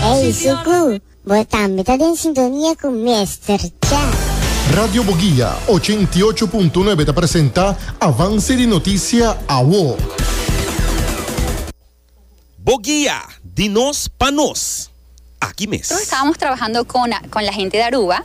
Ey Suku, bo tambe ta den sintonia cu Mester Cha. Radio Boguia ochenta i ocho punto nuebe ta presenta Avance di Noticia Awo. Boguia, di nos pa nos. Aki mes. Tur estábamos trabajando con la gente de Aruba.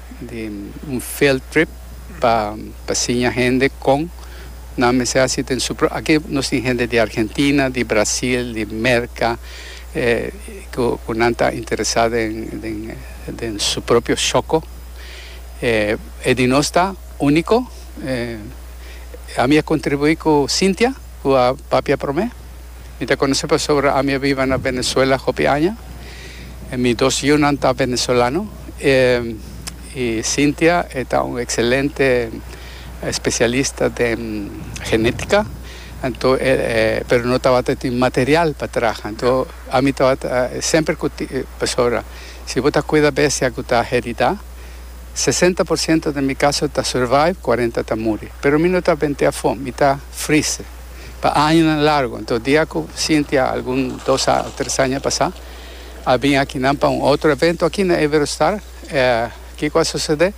di un field trip pa pa siña hende con nan mester haci den su pro. Aki nos tin hende di Argentina, di Brasil, di Merca cu cu nan ta interesa den den den su propio shoco. E di nos ta unico. Ami a contribui cu Cynthia cu a papia prome. Mi ta conoce pasobra ami a biba na Venezuela hopi aña. Mi dos yiunan ta Venezolano y Cynthia e ta un excelente especialista den genetica, anto e pero no tabata tin material pa traha. Anto ami tabata semper cu pasobra si bo ta cuida bestia cu ta herida, sesenta por ciento den mi caso ta survive, cuarenta ta muri. Pero mi no ta venti afo, mi ta freeze. Pa añanan largu, anto dia cu Cynthia algun dos a tres aña pasá a bin akinan pa un otro evento aki na Iberostar, kico a sucedé?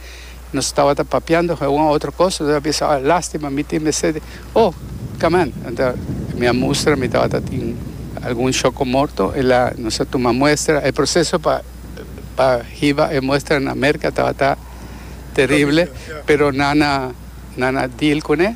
Nos tabata papiando cu un a otro cos, nos a bisa, oh, lastima, mi tin mester di, oh, caman. Enta, mi a mustra, mi tabata tin algun choco morto, el a, nos a tuma muestra, e proceso pa, pa hiba e muestra na Merca tabata terrible, pero nan a, nan a deal cun'e.